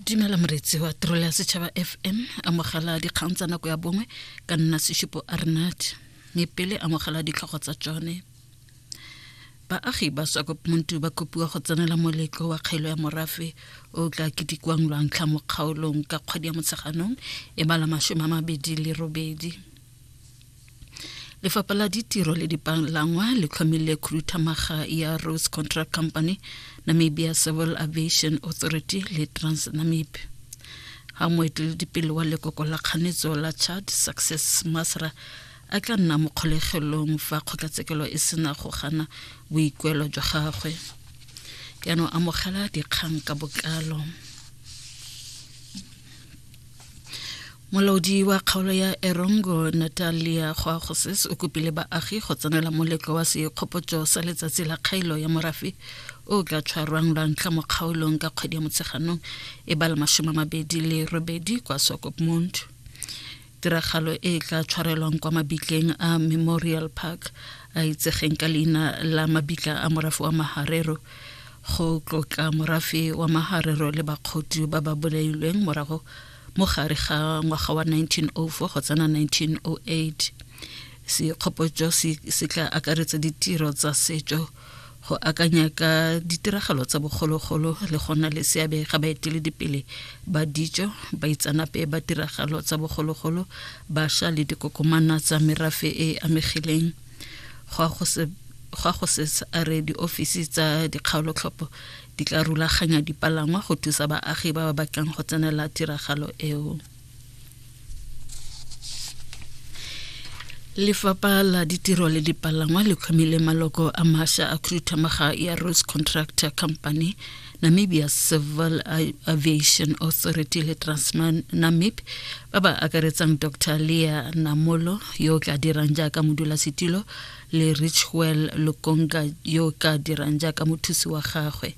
dumela moretsi wa tirelo ya setšhaba fm amogela dikgang tsa nako ya bongwe ka nna seshupo arnat mme pele amogela ditlhogo tsa tsone baagi ba swakomuntu ba kopiwa go tsenela moletlo wa kgaelo ya morafe o tla ketikwang lwantlha mo kgaolong ka kgwedi ya motsheganong e bala masome a mabedi le robedi lefapha la ditiro le dipalangwa le tlhomile khuduthamaga ya rose contract company namibia civil aviation authority le transnamib ga moeteledipele wa lekoko la kganetso la chad success masra a tla nna mo kgolegelong fa kgotlatshekelo e sena go gana boikuelo jwa gagwe jaanong amogela dikgang ka bokalo molaodi wa kgaolo ya erongo natalia goagoses o kopile baagi go tsenela moletlo wa sekgopotso sa letsatsi la kgaelo ya morafe o ka tshwarwang lwa ntlha mo kgaolong ka kgwedi ya motsheganong e ba le masome mabedi le robedi kwa sokopmond tiragalo e tla tshwarelwang kwa mabitleng a memorial park a itsegeng ka leina la mabitla a morafe wa maharero go tlotla morafe wa maharero le bakgotu ba ba bolailweng morago mo gare ga ngwaga wa 1904 go tsena 1908 sekgopotso se tla akaretsa ditiro tsa setso go akanya ka ditiragalo tsa bogologolo le gona le seabe ga baeteledipele ba ditso baitsanape ba tiragalo tsa bogologolo basha le dikokomana tsa merafe e amegileng go go se ga go se a re diofisi tsa dikgaolotlhopho di tla rulaganya dipalangwa go thusa baagi ba ba batlang go tsenela tiragalo eo lefapha la ditiro le dipalangwa le tlhomile maloko a masha a khuduthamaga ya rose contractor company Namibia Civil Aviation Authority le Transnamib ba ba akaretsang Dr. Leah Namolo yo o tla dirang jaaka modulasetilo le Richwell Lukonga yo o ka dirang jaaka mothusi wa gagwe.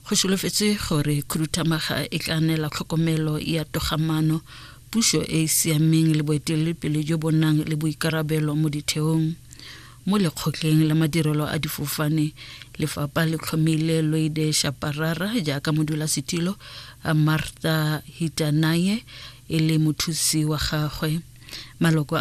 Go solofetse gore khuduthamaga e tla neela tlhokomelo ya togamano puso e e siameng le boeteledipele jo bo nang le boikarabelo mo ditheong Mo lekgotleng la madirelo a difofane, lefapha le tlhomile Loide Shaparara jaaka modulasetilo, a Martha Hitanaye e le mothusi wa gagwe. Maloko a